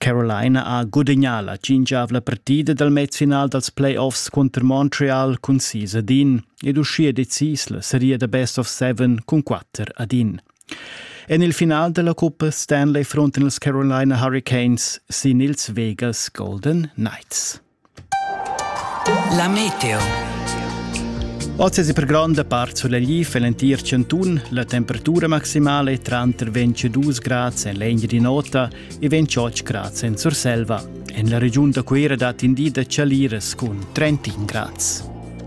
Carolina ha gudagnà la tschintgavla partida dal mezfinal dals playoffs cunter Montreal cun sis ad in ed uschia decis la seria da best of seven cun quatter ad in. En il final da la cuppa Stanley frontan ils Carolina Hurricanes sin ils Vegas Golden Knights. La meteo. Oz es per gronda part sulegliv en l'entir chantun. La temperatura maximale è tranter 22 grads en l'egna di nota e 28 grads en Surselva. En la regiun da Cuera dat in di da chaliras cun 31 grads.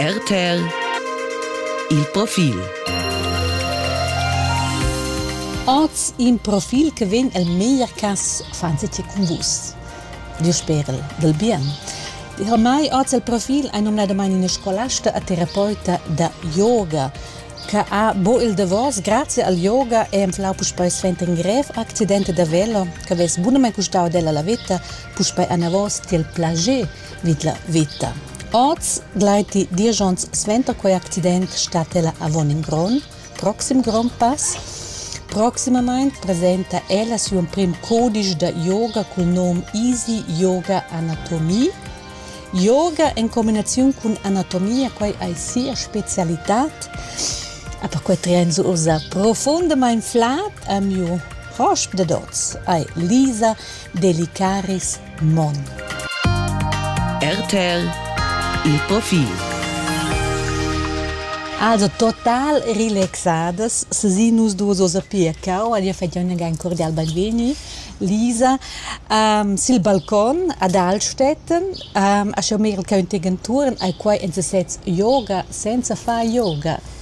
RTL Il profil Oz in profil che vegn el meglier cas fanzetje cun vus. Diu sperel del bien. Per mai oz il profil è nominadamente una scolasta e terapeuta da yoga che ha bo il davos grazie al yoga è enflau puspei svente in grev accidente da velo che ves bunamente custau della la vita puspei anavos tiel plager vid la vita. Oz gleiti diesch onns suenter quei accident stat ella avon in gron, proxim grond pass. Proximamein presenta ella siu emprim codisch da yoga cul nom Easy Yoga Anatomie. Yoga en combinaziun cun anatomia, quei ei sia specialitad. A perquei trien se ussa profundamein flad a miu hosp dad oz, ei Lisa Delicaris Mon. RTL il profil. Also total relaxadas, se nus duos osa piacau, alia fadion ein cordial benvegni. Lisa, um, sil balcon ad Altstetten, um, a schon meil che un tegenturen ai quai en sesez yoga senza fa yoga.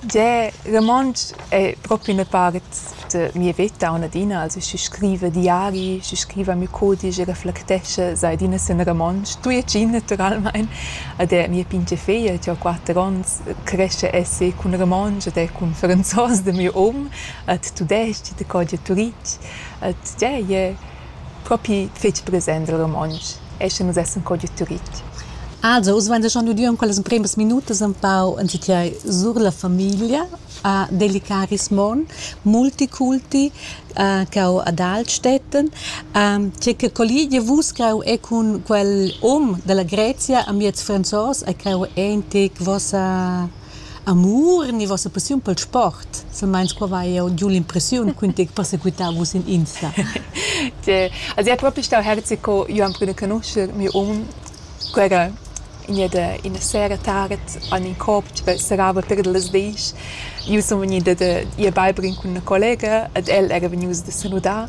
Gie, romontsch ei propi üna part da mia veta aunc adina. Also schi scriva diari, schi scriva miu cudisch e reflectescha, sai adina sen romontsch, tujetschin naturalmein. Ed er mia pintga feglia, che ho quatter onns, crescha esser cun romontsch ed er cun franzos da miu um, ed tudestg ed er co gia tuditg. Ed gie, ie. propi fetg present el romontsch e sche nus essan co giu Turitg. Also, oz vein schon udiu en quellas empremas minutas empau enzatgei sur la famiglia a Delicaris Mon, multiculti, che ho ad Altstätten. Tge che colligia vus creu è cun quel um dalla Grezia amiez franzos e creu eintic vossa Amur ni vossa passiun pel sport? Silmeins qua vai jeu giu l'impressiun ch'ün tec persequità vus in Insta. Also è proprio stau herzi co io am prüna conoscher miu um quella ina de ina sera tard an in copch per serava per las desch. Io sun vegnida da ir beiber in cun ina collega ed el era vegnius da saludar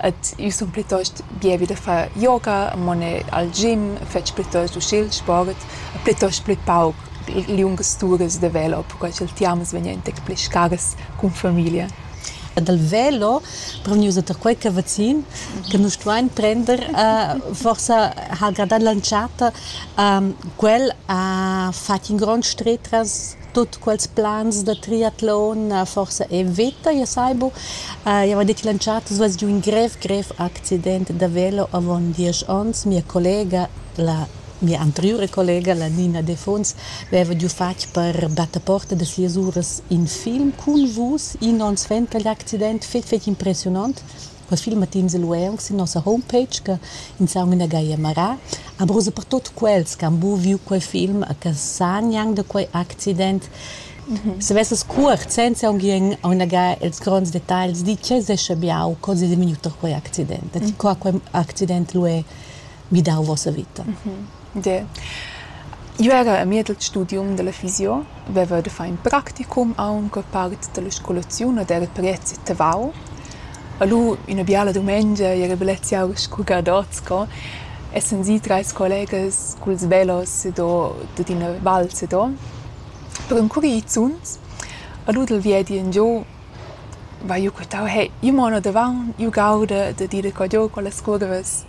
Ed io sun plitost bievi da far yoga, amo ne al gim, fetsch plitost uschè il sport, plitost plü pauc liungas turas da velo, perquai cha'l tiamas vegnan ün tec pli scaras cun famiglia. E dal velo prend nus oter quai ch'è vaccin che nus stuain prender. forsa ha'l gradà l'entschatta. quel ha fatg in grond stret tras tut quels plans da triatlon uh, forsa e veta, ja sai bu. Uh, ja va dir che l'entschatta svess giu in grev, grev accident da velo avon diesch onns. Mia collega, la mia anteriore collega, la Nina Defuns, aveva giu fatg per battaporta de sias uras in film cun vus, in onns vent, quegl accident fetg, fetg impressionant. Quels filmatins lu ei aunc sin nossa homepage che ins ha aunc inagai a marar. Aber ussa per tut quels che han buc viu quei film e che san gnanc da quei accident, se vesses cuort, senza aunc ien inagai ils gronds detagls, di tgei sescha biau co sedevegnir da quei accident. E ti qua quei accident lu ei midau vossa vita. De. Jeu era a mied el studium dalla fisio, veva da far in practicum aunc part dalla scolaziun ed era prezi tavau. E lu ina biala dumengia era bellezia scurgadots sco essan si treis collegas culs velos ed dad ina val sedo per encurir i zuns. E lu dal viedi engiu vai jeu quitau, hey, jeu mo ina davaun, jeu gauda dad ira cò giu con las curvas.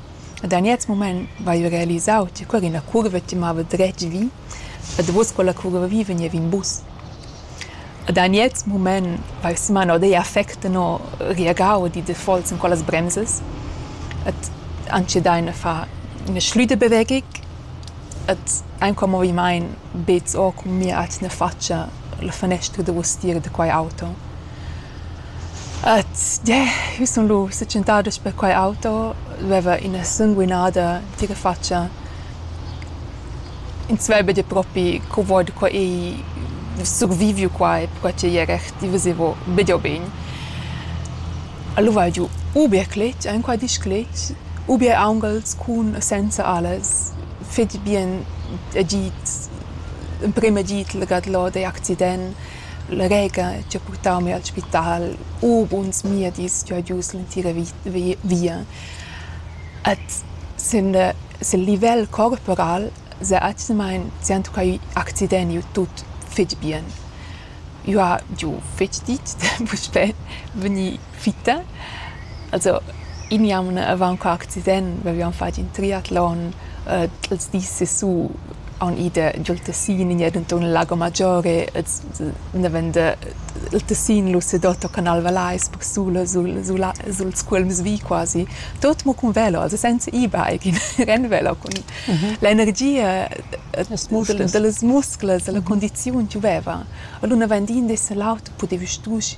Da gnez mumaint vaiva realisau cha quella ina curva chi mava dretg vi e davous quella curva vi vegniva in bus. Da gnez mumaint vaiva sumano deir affect tenor reagau e dit defaults cun quellas bremsas et han dschi dà üna fa üna schlüda bewegung et aint quel movimaint bets o cun mia atgna fatscha la fanestra davous tira da quai auto. Jeu sun lu setschentada sper quei auto, dueva ina sanguinada tgira fatscha. Ins veva dir propi co vot co ei surviviu quai perquai ch'ei era reactivas e vo bider bein. Alura hai giu ubier cletg, enqual diesch cletg, ubier aunghels cun e senza alas, fetg bien agid, emprem agid legat lod egl accident. La rega chi ha purtau mi al spital u buns miedis chi ho gius l'entira via. Ed sin sil livel corporal s'ha atgnamaing tschientocau accident iu tut fitg bien. Jeu ha giu fetg ditg puspè vegni fitta. Also in jaun avant qua accident vevian fatg in triatlon äh, els dis sessu haun ida giul Tessin in ed enturn il Lago Maggiore els naven de il Tessin Lussedotto Canal Valais per sulla sul sul suls cuolms vi quasi tot mo cun velo also senza e-bike in renvelo con mhm. l'energia delle muscles la mhm. condizione gioveva allora naven din des l'auto potevi strusch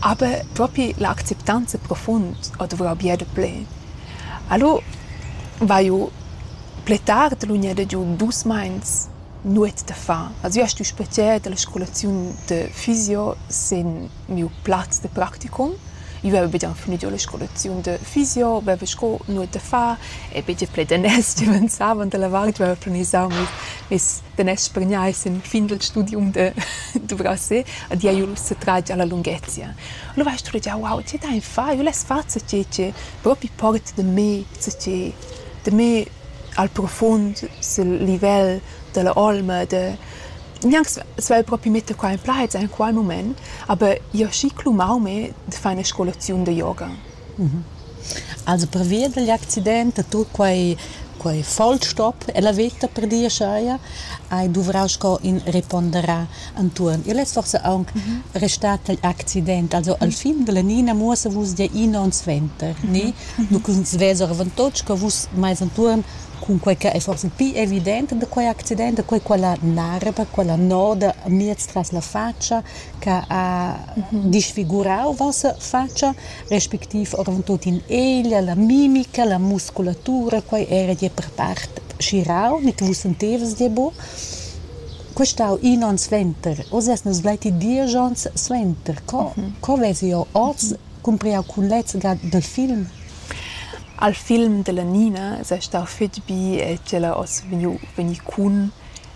Aber propi la acceptanza profund ho duvrà bia daplè. Alura vaiu pli tard l'unir dad ir dus mais nuot da far. Also jeu stun spezier dalla scolaziun da fysio sin miu plaz da practicum. Io veva be già fini giò la scolaziun da fysio, veva sco nuot da far e be già pli daners giuvenzavan dalla vart, veva planisau mes, mes da nes spargnar sin fin dal studium da duvrasser ad ia jul setratg alla lunghezia. Allura hai studegià, wow, tge da far, jul less far ce che propi port da me, ce che da me al profund sil livel dalla olma da gnanc svelt propi metter qua in plaz en qual moment, aber io schi clomau me da far una scolaziun da yoga. Also pervia dagl accident e tut quei quei vollstop ella veta per dir aschia hai duvrau sco in reponderar entuorn. Igl es forsa aunc restat tagl accident. Also al fin dalla Nina muossa vus gia in onn suenter, ni? Nu ch'ins vesa oravontut sco vus mais entuorn cun quei che ei forsa pli evident da quei accident, da quei quella narra, quella noda miez tras la fatscha, che ha disfigurau vossa fatscha, respectiv oravontut in eglia, la mimica, la musculatura, quei era gie per part schirau, ni che vus sentevas gie buc. Quei stau in onn suenter, oz eis nus gleiti diesch onns suenter. Co, co vesi jeu oz cumpriau cun lezga dal film? Al film della Nina sei stau fetg bi e tg'ella oz vegniu, vegni cun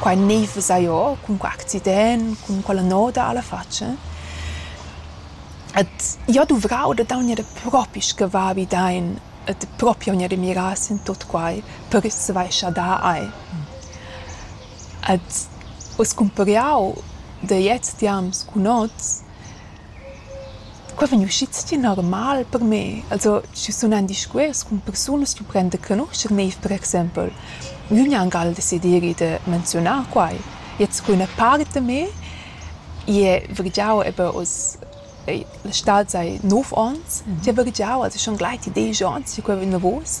Quai gnif vesà jo cun que accident, cun quella noda a la fatscha. Et jo duvrau da daugner propi schi va bi dain et propi augner da mirar sin tuot quai per svaischer da eir. Et uss cumpr'eau da jetzt jams cun hoz Qua vegn uschids adina normal per me. Also schi sunan discuors cun persunas chi prendan canuscher neiv per exaimpel. Gnü gnanc al desideri da menziunar quai. Jetzt cun üna part da me i he vargiau eben oz la stad sai nov ons. Ti he vargiau, also schon gleiti desch ons che quai vegn davos.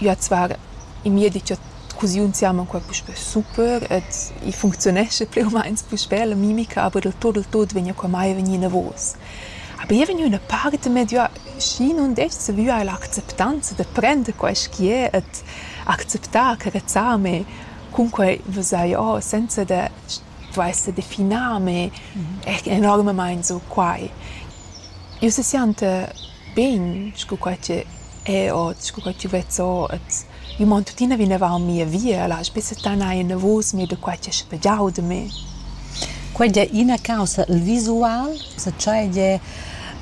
Üa zvarda in miedi cha cusiun siamo qua puspè super ed i funcziunescha plü u mains puspè la mimica, aber del tot, del tot vegna qua mai vegnì inavos. Aber i è vegnü üna part medià schi nun dess savü eir l'acceptanza da prender quaiskiè ed acceptar, carezzar mê. Cunquai vesaja senza da stuair definar mê enormamaing so quai. Üna se sianta Bein sco quai che è ot, sco quai ch'jeu vezz ot. Io mon tuttina vinavant mia via, lasch be settanar enavos mei da quai ch'è spagiau da me. Quei ei ina caussa, il visual, sa tschei gie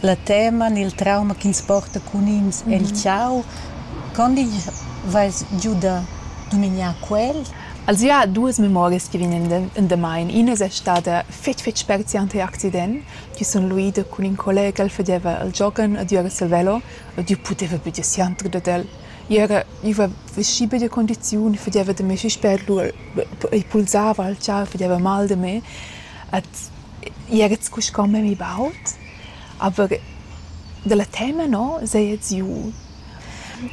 la tema ni il trauma ch'ins porta cun ins el tgau, quond igl veis giu da dumignar quel? Els ha duas memorias che vegnan endamain. Ina es stada fetg fetg spezial tar accident, chi sun luida cun ün collega ch'el fadeva al giogan adüra Savello e Dieu pudeva be dir siandr dad el. I era gniva vestgì be da condiziun, fadeva da mê suspet, lura i pulsava al char, fadeva mal da mê ed i era scu sco memia baud, aber da la tema no seia giü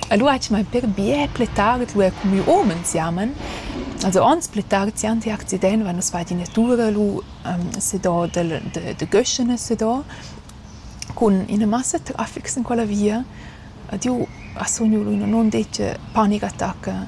E nu haja mai per bger plet tard lura cumü homens jaman. Also ans plet tard si ante accident va nus far d'üna tura lu sedà dal da da Göschene sedà cun üna massa trafic sin quella via. Ed eu ha sugnu lu in non detg panicattacca.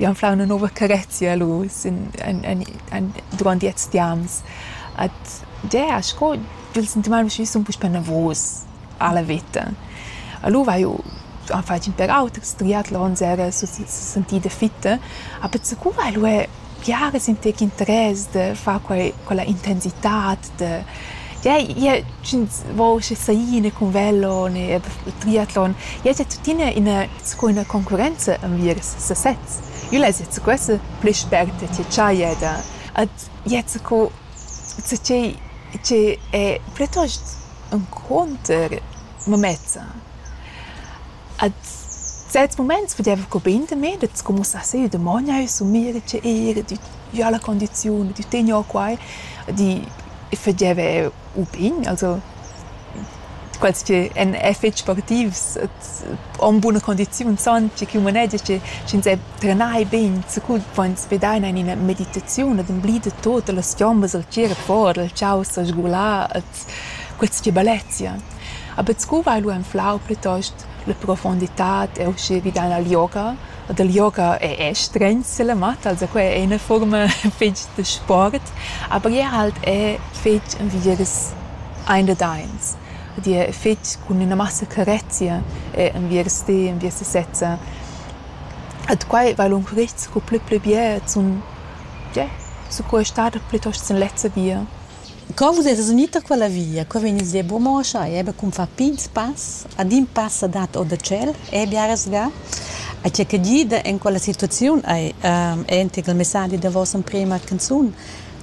Jau anflau üna nouva carezia lur sün en en en durant lets tiams. Ed gea, sco il sentimaint usché sun puspè navus a la vita. Alura haju am fatg ün pèr auters, strià l'onn sera, so sentir da fitta. A pezza cura ha'l uè Biaras in tec interess da far quei quella intensitad da ja ja sch'ins vo schi saina cun velo ne triatlon ja es tuttina ina sco ina concurrenza enviers sasez. Io less jazzer questa pli spert tgei cha i è da ad jazzer co zatgei che è plitost encunter mamezza. A certs muments pudeva cumpigner da me da scumusar sü, da mogner sumir, da ir, da giar la condiziun, da tegner quai, da fageva u pign, also quels chi èn fich sportivs en buna condiziun san che ch'ün manegia che sch'ins è trenai bain, sicur vain sfidaina in ina meditaziun ed emblida tuot da las chiombas dal tgir fora, dal chau s'sgular, ed Questa tibalezia ha buc sco vai lu anflau plitost la profunditad e uschia vi dalla yoga. E dal yoga è è stregn selamata, also quai è ina fuorma fetg da sport, aber jeu halt è fetg envidieus ein dad eins. Ed jeu fetg cun ina massa carezia è enviers ti, enviers ti sezza. Ed quai va lung curists sco pli pli bia zun, ja, sco ei stada plitost sin lezza via. Co vus eis vegni tar quella via? Qua vegn il zebro Moscha e ebia cun far pigns pass, ad in pass ha dat or da tschel, e biaras ga. A tgei che gida en quella situaziun ei entec il messadi da vossa emprema canzun: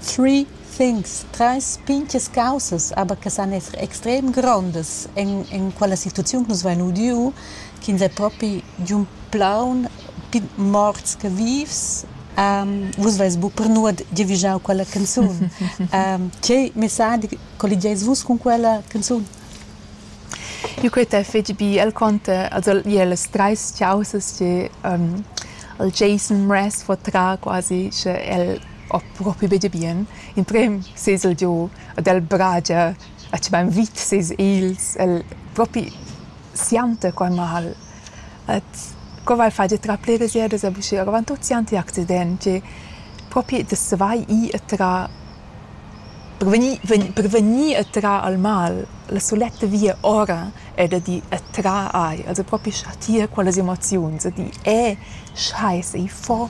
Three things, treis pintgas caussas, aber che san esser extrem grondas en, en quella situaziun che nus vein udiu, ch'ins ei propi giun plaun morts che vivs vus veis bu per nuot giavischau quella canzun tgei messadi colligeis vus cun quella canzun Io quei t'è fetg bi el conte also ie las treis chiausas che um, el Jason Mraz fo tra quasi sche el ho propi bege bien in prem sez el giu ad el bragia a ci bain vit ses els el propi sianta quai mal Et co val far da trar pliras ieras a l'uschia avant tuot siand i accidenti? Propi da savair ir e trar per vegnir vegn per vegnir e trar al mal la suletta via ora è da dir e trar air, also propi chatir quellas emoziuns, da dir e schai, sei fo!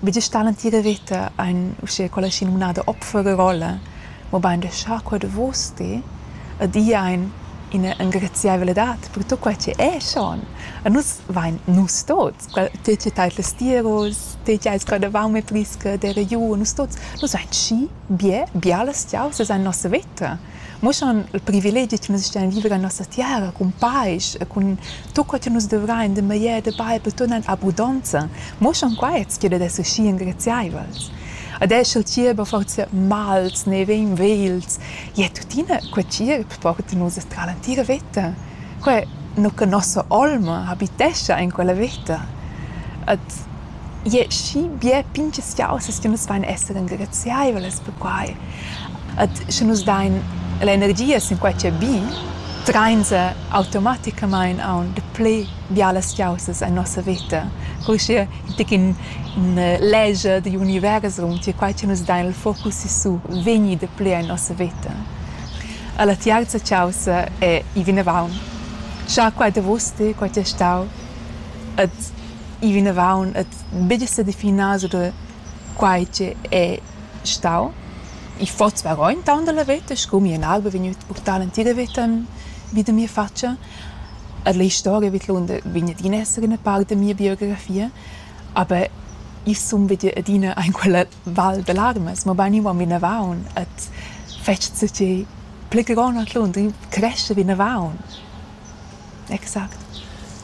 Vus stat l'entira veta aint uschè quella schinumnada Opferrolle, mobain da schar qua davos ti ed ir aint ina engraziaivladad per tut quai che è schon. E nus vain nus tuots, te che tais las tiaras, te che ais gradavant e prisca d'eira giù, nus tuots, nus vain schi bien, bialas tiaras es aint nossa veta. muossan il privilegi che nus stuein viver en nossa tiara cun paisch e cun tut quel che nus dovrein de meglier de bail per turnar in abundonza muossan quei tgira da schi engraziaivels ad esser il tierba forza mals ne vein vels je tuttina quei tierb porta nus tra l'antira veta quei nu che nossa olma habitescha in quella veta et Ie schi bia pintgaziausas che nus vain esser engraziaivlas per quai. Ed sche nus dain l'energia sinquai ch'è bi, trainsa automaticamaing aunc dapli bialas chaussas en nossa veta. Cur che in tec in leger digl univers raunti e quai che nus dain il focus sissu vegni dapli en nossa veta. E la tiarza chaussa è i vinavant. Scha quai davos ti, quai ti è stau. Ed i vinavant e betg stà definà sur da quai che è stau. I fotz varò intaunt da la veta scu mia nalba vegn gnüt purtà l'entira veta vi da mia fatscha. E la istoria vidlonder vegn adina esser üna part da mia biografia, aber io sun be adina aint quella val da larmas, mabain io van vinavant ed fetsch co che pli gron a Lund, io cresce vinavant. Exact.